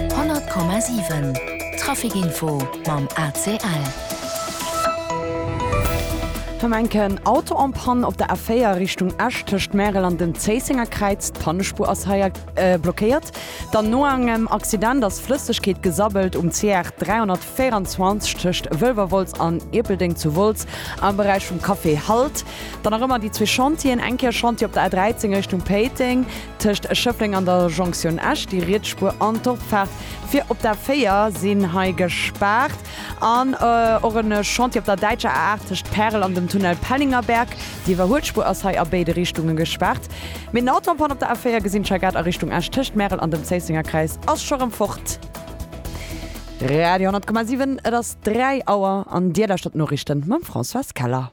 100,7 Traficinfo mam ACL. Tom enken Auto en panne op der A4 Richtung Esch tëscht Märel an dem Zéissenger Kräiz. D'Pannespur ass hei äh, blockéiert. Dann no engem Accident ass Flëssegkeet gesabbelt um CR 324 tëscht Wëlwerwolz an Ierpeldeng zu Wolz am Beräich vum Café Halt. Dann nach ëmmer déi zwee Chantieren, eng Kéier Chantier op der A13 Richtung Péiteng, Tëscht Schëffleng an der Jonktioun Esch, déi riets Spuer an d'Opfaart fir op d'A 4 sinn hei gespaart. An och e Chantier op der däitscher A 8 tëscht Pärel an dem Tunnel Pellingerberg. Déi iwwerhuelt Spuer ass hei a béide Richtunge gespaart. Mee den Autopan op der A 4 gesinn ech hei grad a Richtung Esch, tëscht Märel an dem Zéissenger Kräiz ass scho rëm fort. Radio 10,7, et ass 3 Auer an Dir lauschtert d'Noriichten mam Françoise Keller.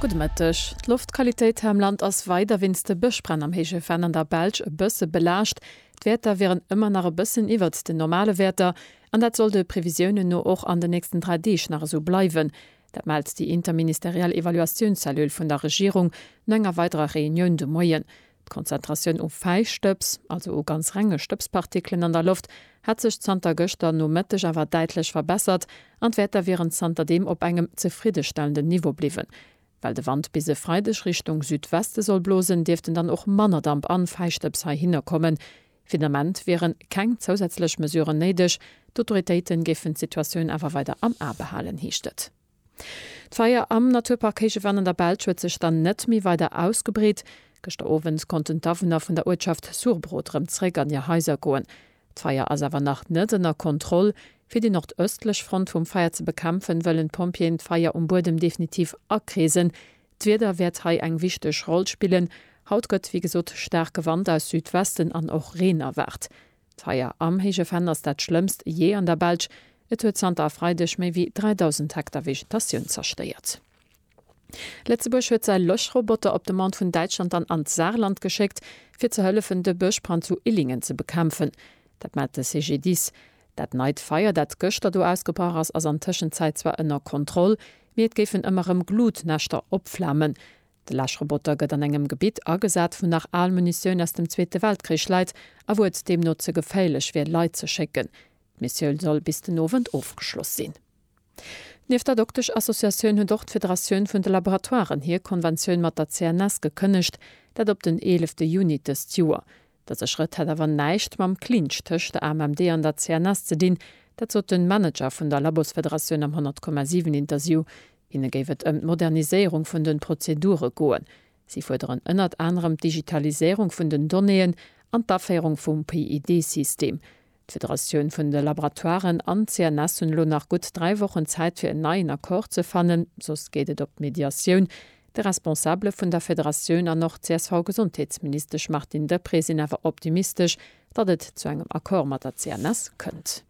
Gudde Mëtteg. D'Loftqualitéit hei am Land ass weider wéinst de Bëschbränn am héije Venn an der Belsch e bësse belaascht. D'Wäerter wieren ëmmer nach e bëssen iwwert den normale Wäerter an dat soll de Previsiounen no och an den nächsten dräi Deeg nach esou bleiwen. Dat mellt déi interministeriell Evaluatiounscellule vun der Regierung no enger weiderer Reunioun de Moien. D'Konzentratioun u Fäistëbs, also u ganz renge Stëbspartikelen an der Loft, hätt sech zanter gëschter Nomëtteg awer däitlech verbessert an d'Wäerter wieren zanterdeem op engem zefriddestellenden Niveau bliwwen. Well de Wand bis e Freideg Richtung Südweste soll blosen, dierften dann och manner Damp an Fäistëbs heihinner kommen. Fir den Ament wieren keng zousätzlech Mesuren néideg, d'Autoritéiten géifen d'Situatioun awer weider am A behalen, heescht et. D'Feier am Naturpark Héichewann an der Belsch huet sech dann net méi weider ausgebreet. Gëschter Owend konnten d'Awunner vun der Uertschaft Surbrot rëm zréck an hir Haiser goen. D'Feier ass awer nach net ënner Kontroll. Fir déi nordëstlech Front vum Feier ze bekämpfen, wëllen d'Pompjeeën d'Feier um Buedem definitiv akreesen. D'Wieder wäert hei eng wichteg Roll spillen. Haut gëtt wéi gesot staarke Wand aus Südwesten an och Reen erwaart. D'Feier am Héije Venn ass dat schlëmmst jee an der Belsch. Et huet zanter e Freideg méi wéi 3.000 Hektar Vegetatioun zerstéiert. Lëtzebuerg huet säi Löschroboter op Demande vun Däitschland dann an d'Saarland geschéckt, fir ze hëllefen, de Bëschbrand zu Illingen ze bekämpfen. Dat mellt de CGDIS. Dat neit Feier, dat gëschter do ausgebrach ass, ass an Tëschenzäit zwar ënner Kontroll, mee et géifen ëmmer erëm Glutnäschter opflamen. De Läschroboter gëtt an engem Gebitt agesat, wou nach al Munitioun aus dem Zweete Weltkrich läit a wou et deemno ze geféierlech wier, Leit ze schécken. D'Missioun soll bis den Owend ofgeschloss sinn. Nieft der Doktesch-Associatioun huet och d'Federatioun vun de Laboratoiren hir Konventioun mat der CNS gekënnegt, dat op den eelefte Juni dëst Joer. Dëse Schrëtt hätt awer näischt mam Clinch tëscht der AMMD an der CNS ze dinn. Dat sot de Manager vun der Labosfederatioun am 100,7 Interview. Hinne géif et ëm d'Moderniséierung vun de Prozedure goen. Si fuerderen ënnert anerem d'Digitaliséierung vun den Donnéeën an d'Aféierung vum PID-System. D'Federatioun vun de Laboratoiren an d'CNS hunn elo nach gutt dräi Wochen Zäit fir en neien Accord ze fannen, soss geet et op d'Mediatioun. De Responsabele vun der Federatioun an och CSV-Gesondheetsministesch Martine Deprez sinn awer optimistesch, datt et zu engem Accord mat der CNS kënnt.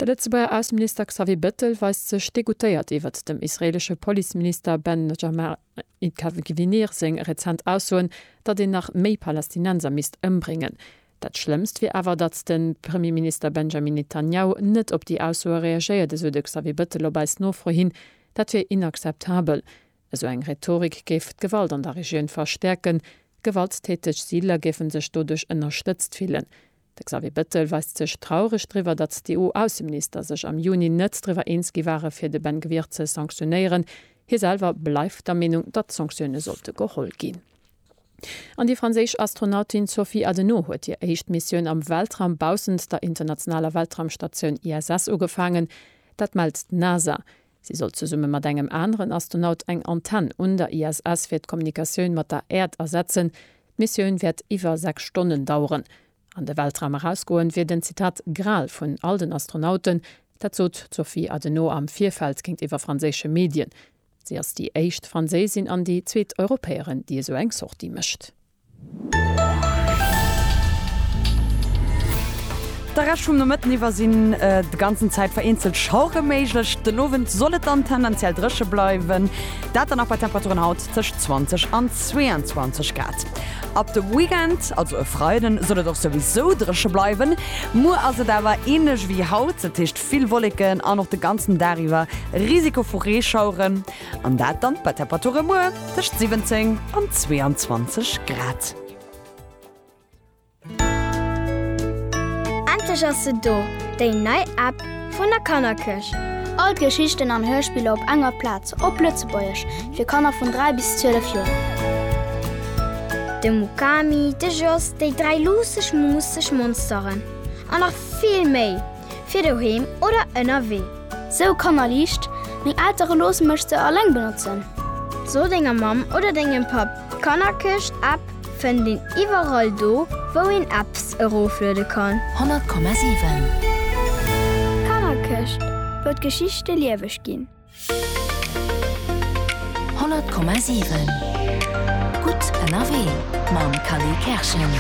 De Lëtzebuerger Ausseminister Xavier Bettel weist sech degoûtéiert iwwert dem israeelesche Policeminister Benjamin Et ka Gwineer seng rezent Aussoen, datt een nach méi Palästinenser misst ëmbréngen. Dat Schlëmmst wier awer, datt de Premierminister Benjamin Netanjahu net op déi Aussoe reagéiert, esou de Xavier Bettel op eis Nofro hin. Dat wier inakzeptabel. Esou eng Rhetorik géif d'Gewalt an der Regioun verstäerken. Gewalttäteg Siidler géife sech doduerch ënnerstëtzt fillen. De Xavier Bettel weist sech traureg driwwer, datt d'EU-Ausseminister sech am Juni net driwwer eens gi ware fir de Ben Gvir ze sanktionéieren. Hie selwer bleift der Meenung, datt Sanktioune sollte geholl ginn. An déi franséisch Astronautin Sophie Adenau huet hir éischt Missioun am Weltraum baussent der internationaler Weltraumstatioun ISS ugefaangen. Dat mellt d'NASA. Si soll zesumme mat engem aneren Astronaut eng Antenn un der ISS fir d'Kommunikatioun mat der Äerd ersetzen. D'Missioun wäert iwwer 6 Stonnen daueren. An de Weltraum erausgoen, wier den, Zitat, Gral vun all den Astronauten. Dat sot d'Sophie Adenot am Virfeld géintiwwer franséische Medien. Si ass déi éischt Franséisin an déi zweet Europäerin, déi esou eng Sortie mécht. De Rescht vum Nomëtten iwwer sinn de ganzen Zäit vereenzelt Schauere méiglech. Den Owend soll et dann tendenziell dréche bleiwen, dat dann nach bei Temperaturen haut tëscht 20 an 22 Grad. Ab de Weekend, also e Freiden, soll et och souwisou dréche bleiwen. Muer ass et awer änlech wéi haut, dat heescht vill Wolleken an och de ganzen Dag iwwer Risiko vu Reeschaueren. An dat dann bei Temperature muer tëscht 17 an 22 Grad. Endlech ass se do, déi nei App vun der Kannerkierch! All d'Geschichten an Hörspiller op enger Plaz, op Lëtzebuergesch, fir Kanner vun 3 bis 12 Joer. De Mukami, de Jos, déi dräi luusseg, muusseg Monsteren an nach vill méi! fir doheem oder ënnerwee. Sou kannerliicht, meng Eltere loosse mech se alleng benotzen. So denger Mamm oder dengem Papp, d'Kannerkëscht App fënnt een iwwerall do wou een Apps erofluede kann. 100,7. D'Kannerkëscht, wou d'Geschichte lieweg ginn. 100,7 Gutt ënnerwee mam Khalil Kerschen.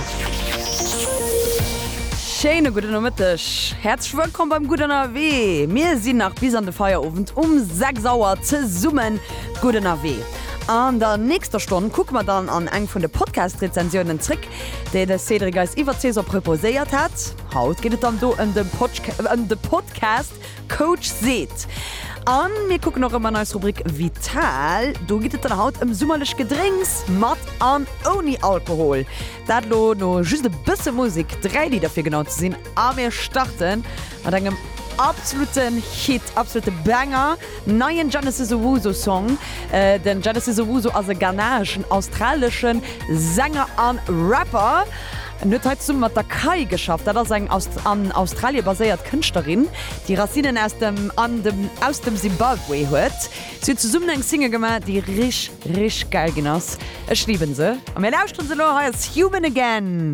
Schéine gudden Nomëtteg. Häerzlech wëllkomm beim Gutt ënnerwee. Mir sinn nach bis an de Feierowend um 6 Auer zesumme gutt ënnerwee. An der nächster Stonn kucke mer dann an eng vun de Podcast-Rezensiounen zréck, déi de Cédric eis iwwert d'Saison proposéiert hat. Haut geet et dann do ëm de Podcast Coach seet. An mir kucken och ëmmer an eis Rubrik Vital. Do geet et dann haut ëm summerlech Gedrénks mat an ouni Alkohol. Dat lo no just e bësse Musik, 3 Lidder fir genau ze sinn. A mir starten mat engem absoluten Hit, absolute Banger, neien Genesis Owusu Song. Den Genesis Owusu ass e ghanaeschen, australeschen Sänger an Rapper. En huet hei zesumme mat der Kai geschafft. Dat ass eng an Australie baséiert Kënschtlerin, déi Racinnen aus dem an dem aus dem Simbabwe huet. Si hunn zesummen eng Single gemaach, déi rich, rich gäil ginn ass. Ech liben se a mir lauschteren se elo. Hei ass Human Again.